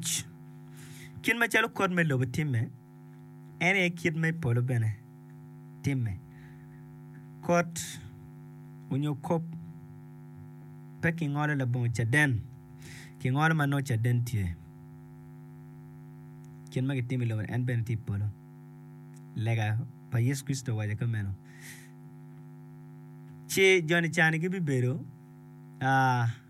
Tic. Kit macalo kot me lobo timme, en aye kit me polo bene timme. Kot onyo kop pe kingolo labongo caden, kingolo ma nongo caden tye. Kit ma kitimo i lobo-ni en bene tye i polo. Lega pa Yecu Kricito owaco ki meno. Ci joni cani gibibedo aa.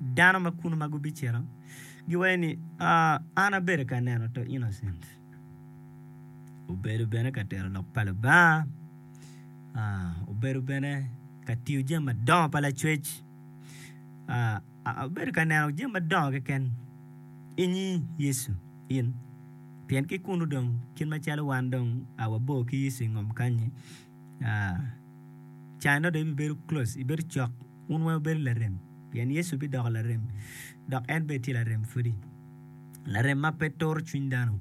Dano ma kunu ma gubicito giwaco ni, Ah, an abedo ka neno to Innocent obedo bene ka tero lok pa Lubanga, ah, obedo bene ka tiyo jami madongo pa lacwec, ah, abedo ka neno jami madongo keken inyi Yecu in, pien ki kunu dong kit macalo wan dong a wabor ki Yecu ingom kanyi. Caa nongo dong ibibedo close, ibedo cok, wun weng wubedo larem pien Yecu bidoko larem dok en bene tye larem pwodi. Larem ma pe turo cwiny dano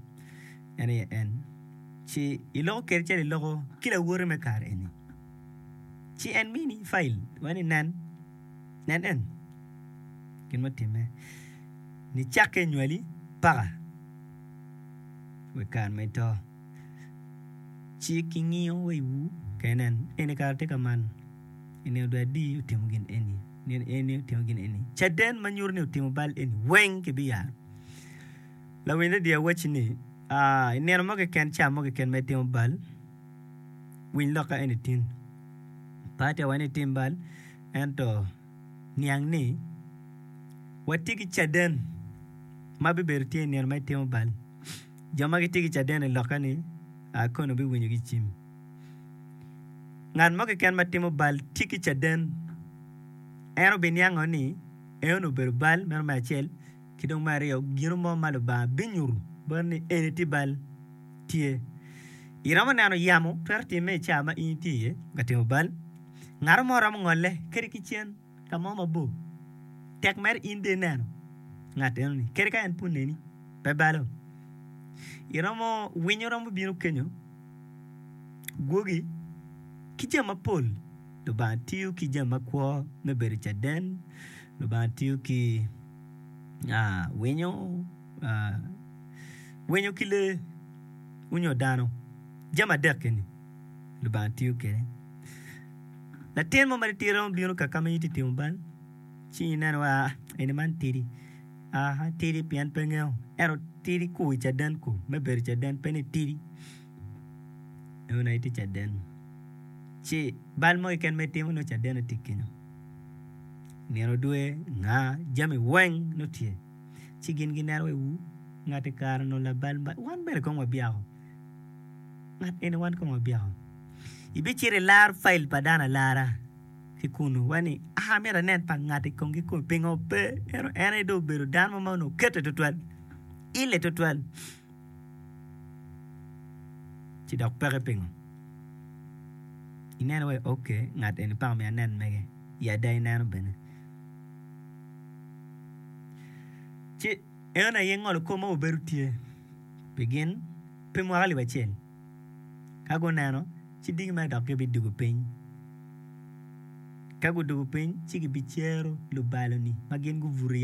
en aye en. Ci iloko kwede calo iloko ki lawote me kare eni. Ci en mini cai iwaci ni nen, nen en gin ma otimme nicakke inywali paka wa i kare ma ito. Ci kingiyo wa iwu kenen, eni kara tye ka man, ineno dong adi otimo gin eni, ineno eni otimo gin eni. Caden ma nyuto ni otimo bal eni weng kibiyaro. Lawiny redio awacci ni, ah, ineno mo keken, ca mo keken ma itimo bal, winy lok ka eni tin. Pe atye ka waco ni itim bal, ento niang ni watye ki caden ma bibedo tye ineno ma itimo bal. Jo ma gitye ki caden i lokke-ni a kono biwinyo ki cim. Ngat mo keken ma timo bal tye ki caden. En obiniango ni eno obedo bal, meno me acel, ki dong me aryo, gino mo ma Lubanga binyuto boti ni eni tye bal, tye. Iromo neno yamo twero timme i cawa ma in itye iye ka timo bal? Ngato mo romo ngolle kadi ki cen. ka mo mabor, tek mere in bene ineno ngat enoni, kadi ka en pud neni pe balo. Iromo winyo romo bino kenyo, gwogi, ki jami mapol. Lubanga tiyo ki jami makwo me bedo caden, Lubanga tiyo ki winyo, winyo ki lee onyo dano, jami adek eni Lubanga tiyo kwede. Latin mo ma titidi romo bino ka ka ma in itye ka timo bal, ci ineno ni eni man tidi. Tidi pien pe ngeyo, ento tidi ku i caden ku, me bedo i caden pe ni tidi. Ineno ni itye i caden, ci bal mo keken ma itimo nongo cadeni tye kenyo. Nino dwe, nga, jami weng nongo tye. Ci gin gineno wiwu, ngati kare onongo labal bal, wan bene kong wabyako. Ngat eni wan kong wabyeko. Ibicito ilaro file pa dano alara ki kunu wa ni amito anen pa ngati kong ki kong pingo pe ento en aye dong obedo dano mo ma onongo okete tutwal, ile tutwal ci dok peke pingo. Ineno iwaci ok ngat eni peya omyero anen mege ya ada ineno bene ci. En aye ngolo kop ma wabedo tye pi gin pi mwaka alip acel. Ka guneno, ci digi mere dok gibidwogo piny. Ka gudwogo piny, ci gibicero lubaloni ma gin gubuto iye